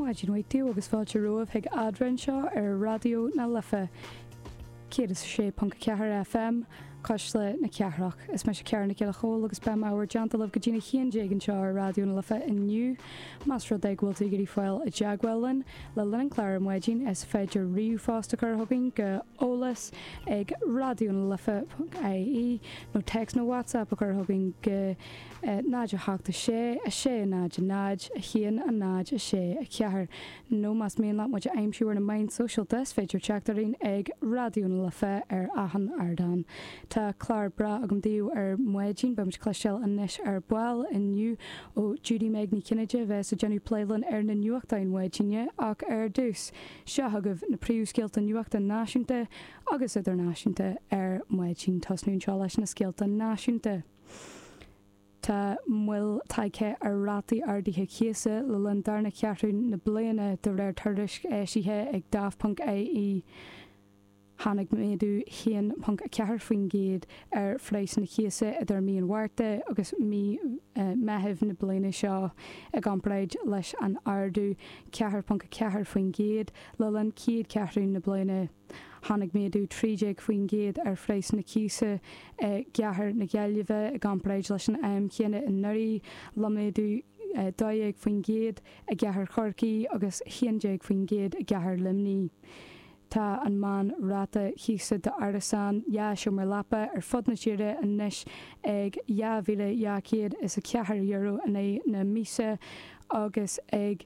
Maidin mhaith daoibh agus fáilte romhaibh chuig Eadrainn anseo ar Raidió na Life 106.4 FM, Cuisle na Cathrach. Is mise Ciara Nic Giolla Chomhaill agus beidh mé ag fanacht libh go dtí a haon déag anseo ar Raidió na Life inniu. Más rud é go bhfuil tú ag iarraidh fáil i dteagmháil linn le linn an clár ar maidin is féidir ríomhphost a chur chugainn go eolas ag raidionalife.ie nó téacs nó WhatsApp a chur chugainn go 0, 8, 6, 6, 0, 0, 1, 0, 6, 4, nó más mian leat muid a aimsiú ar na meáin sóisialta is féidir teacht orainn ag Raidió na Life ar achan ardán. Tá clár breá agam daoibh ar maidin, beimid ag cloisteáil anois ar ball inniu ó Judy-Meg Ní Chinnéide a bheas ag déanamh plé linn ar na nuachtáin maidine ach ar dtús, seo chugaibh na príomhscéalta nuachta náisiúnta agus idirnáisiúnta ar maidin. Tosnú anseo leis na scéalta náisiúnta. Tá moill tagtha ar rátaí ardaithe cíosa le linn darna ceathrú na bliana de réir tuairisc eisithe ag Daft ponc ie. Tháinig méadú 1.4% ar phraghsanna cíosa idir mí an Mhárta agus mí Mheithimh na bliana seo i gcomparáid leis an ardú 4.4% le linn chéad cheathrú na bliana. Tháinig méadú 13% ar phraghas na cíosa i gCathair na Gaillimhe i gcomparáid leis an am chéanna anuraidh, le méadú 12% i gCathair Chorcaí agus 11% i gCathair Luimnigh. Tá an meán ráta cíosa d'árasán dhá sheomra leapa ar fud na tíre anois ag €2,204 in aghaidh na míosa agus ag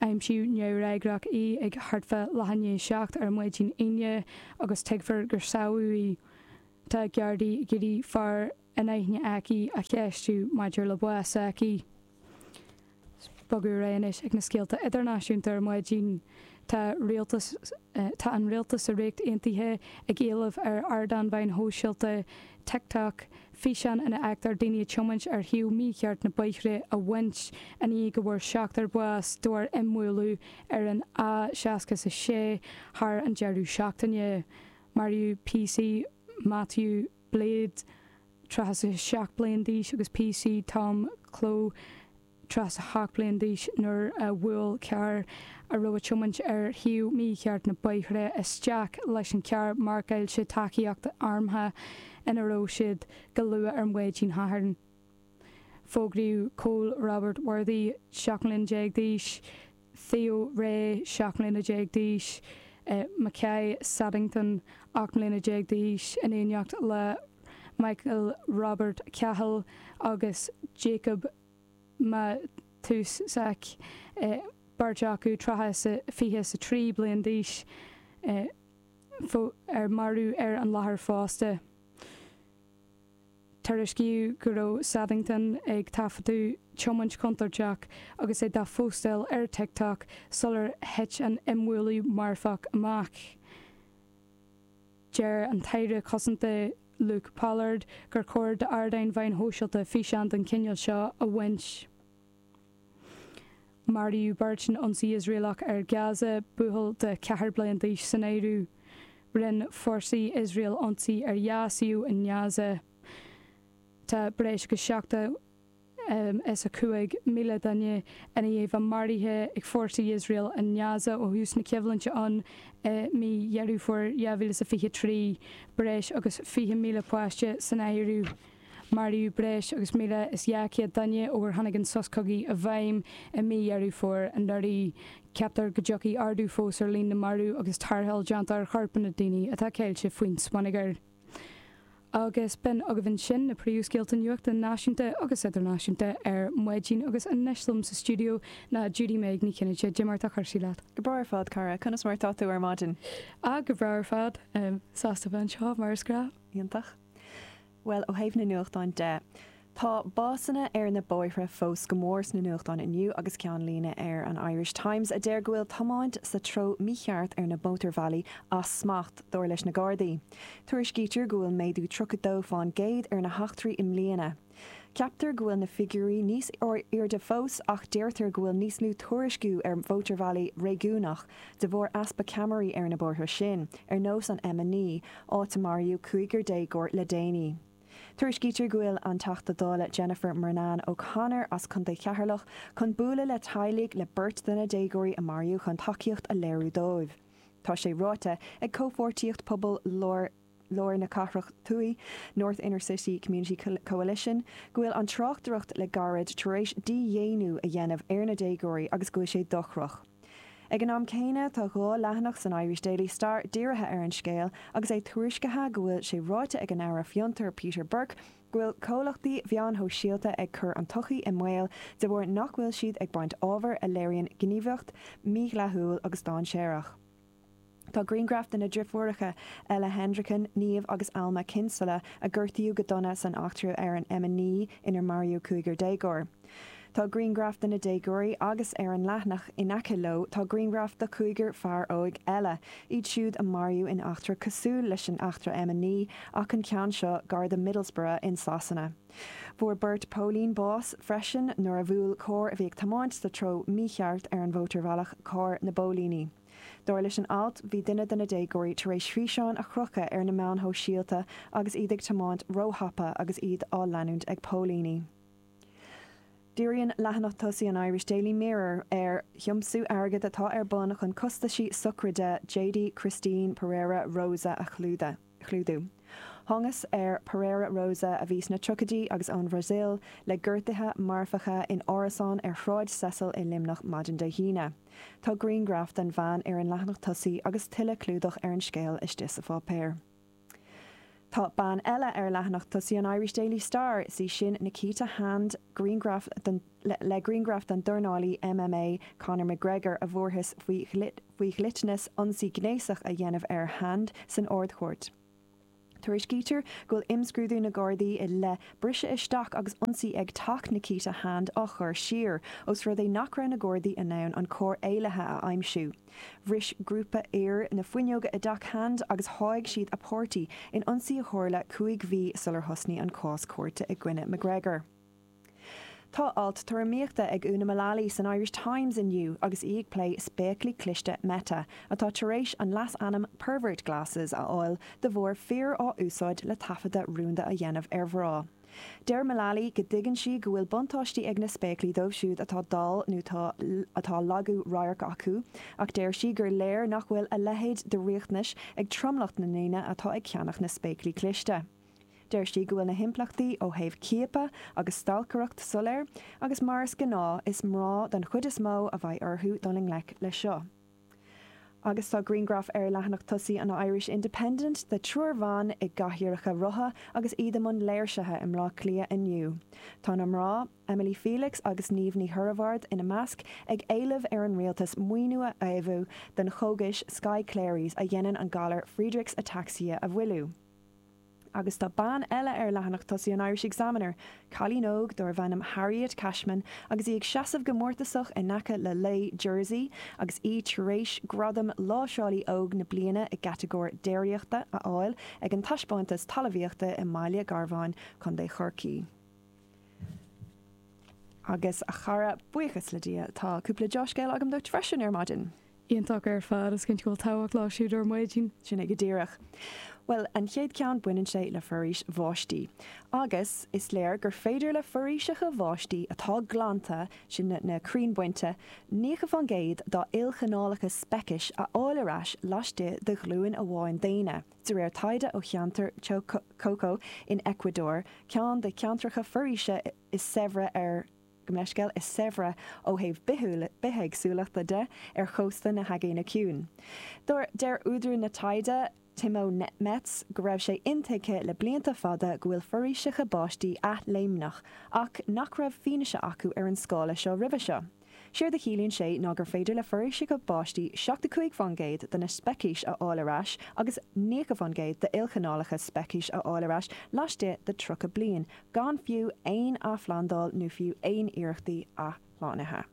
aimsiú neamhfhreagrach í ag thart fá leath i ndiaidh a seacht ar maidin inné agus tuigtear gur samhail í. Tá Gardaí ag iarraidh fear in aithne aici a cheistiú maidir le bás s'aici. Ag bogadh ar aghaidh anois ag na scéalta idirnáisiúnta ar maidin. Tá rialtas, tá an rialtas sa Ríocht Aontaithe ag éileamh ar ardán mheáin shóisialta TikTok, físeáin ina bhfeictear daoine ag tiomáint ar thaobh mícheart na bóithre a bhaint i ndiaidh go bhfuair seachtar bás de bharr imbhualadh ar an A66 thar an deireadh seachtaine. Maraíodh PC Matthew Blades, 37 bliain d'aois agus PC Tom Clough, tríocha a hocht mbliain d'aois nuair a bhuail carr a raibh ag tiomáint ar thaobh mícheart na bóithre isteach leis an charr marcáilte 'Tacaíocht Armtha' ina raibh siad. Go luath ar mhaidin Shathairn, fógraíodh Cole Robert Worthy, seacht mbliana déag d'aois, Theo Rae, seacht mbliana déag d'aois, Makai Saddington, ocht mbliana déag d'aois, in éineacht le Michael Robert Cahill agus Jacob Matusiak beirt acu traithe sa 20 is a 3 bliain d'aois ar maraíodh ar an láthair fosta. Tuairiscíodh go raibh Saddington ag taifeadadh tiomáint contúirteach agus é dá phostáil ar TikTok sular thit an imbhualadh marfach amach. Deir an tAire Cosanta Luke Pollard gur chóir d'ardáin mheáin shóisialta físeáin den chineál seo a bhaint. Maraíodh beirt in ionsaí Iosraelach ar Gaza, buachaill de cheathair bliain d'aois san áireamh. Rinne forsaí Iosrael ionsaí ar dhá suíomh i nGaza tá breis agus 70. is 5,000 duine ina dhiaidh maraithe ag fórsaí Iosrael i nGaza ó thús na coimhlinte ann i mí Dheireadh Fómhair 2023, breis agus 20,000 páiste san áireamh. Maraíodh breis agus 1,200 duine ó ar tháinig an sos cogaidh i bhfeidhm i mí Dheireadh Fómhair anuraidh. Ceaptar go dtiocfaidh ardú fós ar líon na marbh agus tarrtháil déanta ar chorpanna daoine atá caillte faoin smionagar. agus b'in agaibh ansin na príomhscéalta nuachta náisiúnta agus idirnáisiúnta ar maidin agus anois liom sa stiúideo ná Judy-Meg Ní Chinnéide. Cad é mar atá cúrsaí leat? Go breá ar fad, cara, conas mar atá tú ar maidin? Ah, go breá ar fad, sásta bheith anseo, mar is gnáth. Iontach. Bhuel, ó thaobh na nuachtán de, Tá básanna ar na bóithre fós go mór sna nuachtáin inniu agus ceannlíne ar an Irish Times a deir go bhfuil tiomáint sa treo mícheart ar na mótarbhealaí as smacht, dar leis na Gardaí. Tuairiscítear go bhfuil méadú tríocha dó fán gcéad ar na heachtraí i mbliana. Ceaptar go bhfuil na figiúirí níos airde fós ach deirtear go bhfuil níos lú tuairisciú ar mhótarbhealaí réigiúnach de bharr easpa ceamaraí ar na bóithre sin, ar nós an M9, áit a maraíodh cúigear déagóir le déanaí. Tuairiscítear go bhfuil an Teachta Dála Jennifer Murnane O'Connor as Chontae Cheatharlach chun bualadh le teaghlaigh le beirt de na déagóirí a maraíodh chun tacaíocht a léiriú dóibh. Tá sé ráite ag Comhpháirtíocht Pobail Lár na Cathrach Thuaidh, North Inner City Community Coalition, go bhfuil an tráchtaireacht le gairid tar éis dídhaonnú a dhéanamh ar na déagóirí agus go bhfuil sé dochrach. Ag an am céanna, tá dhá leathanach san Irish Daily Star dírithe ar an scéal agus é tuairiscithe go bhfuil sé ráite ag an Aire Fiontar, Peter Burke, go bhfuil comhlachtaí mheáin shóisialta ag cur an tsochaí i mbaol de bharr nach bhfuil siad ag baint ábhar a léiríonn gníomhaíocht mhídhleathúil agus dáinséarach. Tá grianghraif de na driofúireacha Ella Hendricken, Niamh agus Alma Kinsella, a gortaíodh go dona san eachtra ar an M9 inar maraíodh cúigear déagóir. Tá grianghraif de na déagóirí agus, ar an leathanach in aice leo, tá grianghraif de chúigear fear óg eile, iad siúd a maraíodh in eachtra cosúil leis an eachtra M9 ach an ceann seo gar do Middlesbrough in Sasana. Fuair beirt póilín bás freisin nuair a bhuail carr a bhí ag tiomáint sa treo mícheart ar an mhótarbhealach carr na bpóilíní. Dar leis an alt, bhí duine de na déagóirí tar éis físeáin a chrochadh ar na meáin shóisialta agus iad ag tiomáint róthapa agus iad á leanúint ag póilíní. Díríonn leathanach tosaigh an Irish Daily Mirror ar thiomsú airgid atá ar bun chun costaisí sochraide Jade Christine Pereira Rosa a chlúdach. chlúdú. Thángas ar Pereira Rosa a bhí sna tríochaidí agus ón Bhrasaíl le gortuithe marfacha in árasán ar Shráid Cecil i Luimneach maidin Dé hAoine. Tá grianghraf den bhean ar an leathanach tosaigh agus tuilleadh clúdach ar an scéal istigh sa pháipéar. Tá bean eile ar leathanach tosaigh an Irish Daily Star, is í sin Nikita Hand, le grianghraf den dornálaí MMA Conor McGregor a bhfuarthas faoi dhliteanas. faoi dhliteanas ionsaí gnéasach a dhéanamh ar Hand san Ard-Chúirt. Tuairiscítear go bhfuil imscrúdú na Gardaí i leith briseadh isteach agus ionsaí ag teach Nikita Hand á chur siar, ós rud é nach raibh na Gardaí in ann an carr éalaithe a aimsiú. Bhris grúpa fir na fuinneoga i dteach Hand agus sháigh siad a páirtí in ionsaí a tharla cúig mhí sular thosnaigh an cás cúirte i gcoinne McGregor. Tá alt tuairimíochta ag Úna Mullally san Irish Times inniu agus í ag plé spéaclaí cliste Meta atá tar éis an leasainm 'pervert glasses' a fháil de bharr fir á úsáid le taifeadadh rúnda a dhéanamh ar mhná. Deir Mullally go dtuigeann sí go bhfuil buntáistí ag na spéaclaí dóibh siúd atá dall nó atá lagú radhairc acu ach deir sí gur léir nach bhfuil a leithéid de riachtanais ag tromlach na ndaoine atá ag ceannach na spéaclaí cliste. Deir sí go bhfuil na himpleachtaí ó thaobh ciapadh agus stalcaireacht soiléir agus mar is gnáth is mná don chuid is mó a bheidh orthu dul i ngleic leis seo. Agus tá grianghraf ar leathanach tosaigh an Irish Independent de triúr bhan i gcathaoireacha rotha agus iad i mbun léirsithe i mBleá Cliath inniu. Tá na mná, Emily Felix agus Niamh Ní Hoireabhaird ina measc, ag éileamh ar an rialtas maoiniú a fhaomhadh don chógais Skyclarys a dhéanann an galar Friedreich's Ataxia a mhoilliú. Agus tá bean eile ar leathanach tosaigh an Irish Examiner, cailín óg dárbh ainm Harriet Cashman, agus í ag seasamh go mórtasach in aice le lao Jersey agus í tar éis gradam Láimhseálaí Óg na Bliana i gcatagóir Déiríochta a fháil ag an Taispeántas Talmhaíochta i mBaile Garbháin, Co. Chorcaí. Agus, a chara, buíochas le Dia, tá cúpla deá-scéal agam duit freisin ar maidin. iontach ar fad. Is cinnte go bhfuil tábhacht leo siúd ar maidin. Sin é go díreach. Bhuel, an chéad ceann baineann sé le foraois bháistí. Agus, is léir gur féidir le foraoiseacha bháistí atá glanta, sin na crainn bainte, 90 faoin gcéad dá ilchineálacht speicis a fháil ar ais laistigh de ghlúin amháin daonna, de réir taighde ó cheantar Choco in Ecuador, ceann de na ceantracha foraoise is saibhre ar. gabh mo leithscéal is saibhre ó thaobh bithéagsúlachta de ar chósta na hAigéine Ciúine. Deir údar an taighde, Timo Metz, go raibh sé intuigthe le blianta fada go bhfuil foraoiseacha báistí athléimneach ach nach raibh fianaise acu ar an scála seo roimhe seo. Séard a chiallaíonn sé ná gur féidir le foraoiseacha báistí 75% de na speicis a fháil ar ais agus 90% d'ilchineálacht speicis a fháil ar ais laistigh de 30 bliain, gan fiú aon athphlandáil nó fiú aon iarrachtaí athshlánaithe.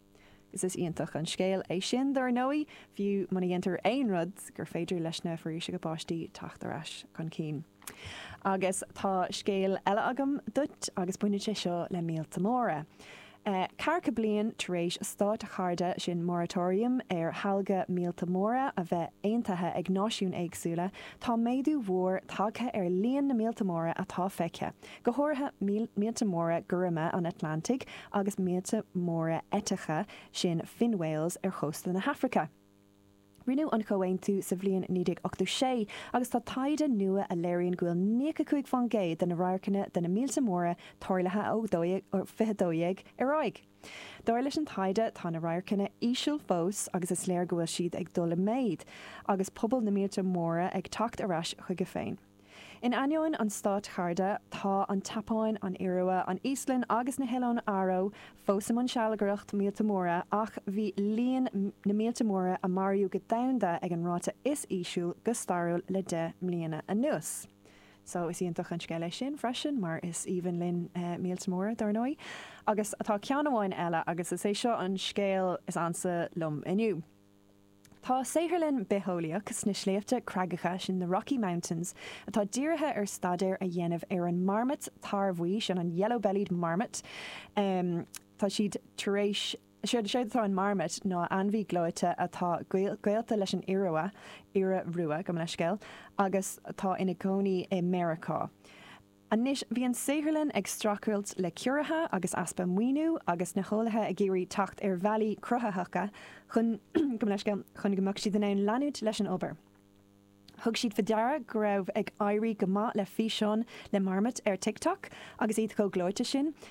Agus is iontach an scéal é sin, dár ndóigh, fiú muna ndéantar aon rud, gur féidir leis na foraoiseacha báistí teacht ar ais chun cinn. Agus tá scéal eile agam duit, agus baineann sé seo le míolta móra. Ceathracha bliain tar éis státchairde sin moratorium ar shealg na míolta móra a bheith aontaithe ag náisiúin éagsúla, tá méadú mhór tagtha ar líon na míolta móra atá feicthe, go háirithe míolta móra gorma an Atlantaigh agus míolta móra eiteacha sin fin whales ar chósta na hAfraice. Rinneadh an Comhaontú sa bhliain 1986 agus tá taighde nua a léiríonn go bhfuil níocha cúig faoin gcéad de na radharcanna de na míolta móra tarlaithe ó 2012 ar aghaidh. Dar leis an taighde, tá na radharcanna íseal fós agus is léir go bhfuil siad ag dul i méid agus pobal na míolta móra ag teacht ar ais chuige féin. In ainneoin an státchairde, tá an tSeapáin, an Iorua, an Íoslainn agus na hOileáin Fharó fós i mbun sealgaireacht míolta móra ach bhí líon na míolta móra a maraíodh go domhanda ag an ráta is íseal go stairiúil le deich mbliana anuas. Sea, is iontach an scéal é sin freisin, mar is aoibhinn linn míolta móra, dár ndóigh. Agus tá ceann amháin eile, agus is é seo an scéal is ansa liom inniu. Tá saotharlann bitheolaíoch sna Sléibhte Creagacha sin, the Rocky Mountains, atá dírithe ar staidéar a dhéanamh ar an marmait tarrbhuí sin, an yellow-bellied marmot. Tá siad tar éis, séard atá in marmait ná ainmhí gleoite atá gaolta leis an iorua, iora rua, gabh mo leithscéal, agus atá ina gcónaí i Meiriceá. Anois bhí an saotharlann ag streachailt le ciorruithe agus easpa maoiniú agus na heolaithe ag iarraidh teacht ar bhealaí cruthaitheacha chun gabh mo leithscéal chun go mbeadh siad in ann leanúint leis an obair. Thug siad faoi deara go raibh ag éirí go maith le físeáin le marmait ar TikTok agus iad chomh gleoite sin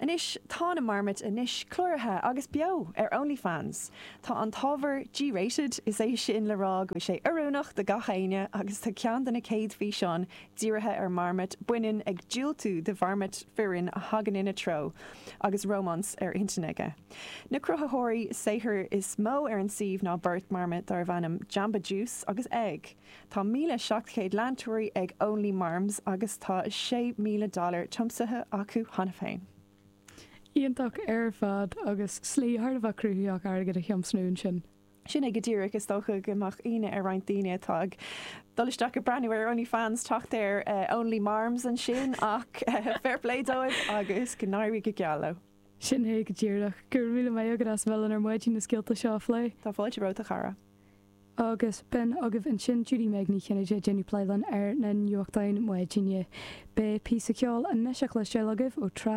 Anois tá na marmait anois cláraithe agus beo ar OnlyFans. Tá an t-ábhar G-rated, is é sin le rá go bhfuil sé oiriúnach do gach éinne agus tá ceann de na céad físeáin dírithe ar marmait baineann ag diúltú do mharmait fireann a thagann ina treo agus rómáns ar intinn aige. Na cruthaitheoirí saothair is mó ar an suíomh ná beirt marmait darbh ainm Jamba Juice agus Egg. Tá 1,700 leantóirí ag Only Marms agus tá 6,000 dollar tiomsaithe acu cheana féin. Iontach ar fad, agus slí thar a bheith cruthaitheach airgead a thiomsnú ansin. Sin é go díreach, is dócha go mbeadh ionadh ar roinnt daoine atá ag dul isteach ag breathnú ar Only Fans ag teacht ar Only Marms ansin ach fair play dóibh agus go n-éirí go geal leo. Sin é go díreach. Go raibh míle maith agat as a bheith linn ar maidin na scéalta seo a phlé. Tá fáilte romhat a chara. Agus b'in agaibh ansin Judy Meg Ní Chinnéide ag déanamh plé linn ar na nuachtáin maidine. Beidh píosa ceoil anois le cloisteáil agaibh ó Trá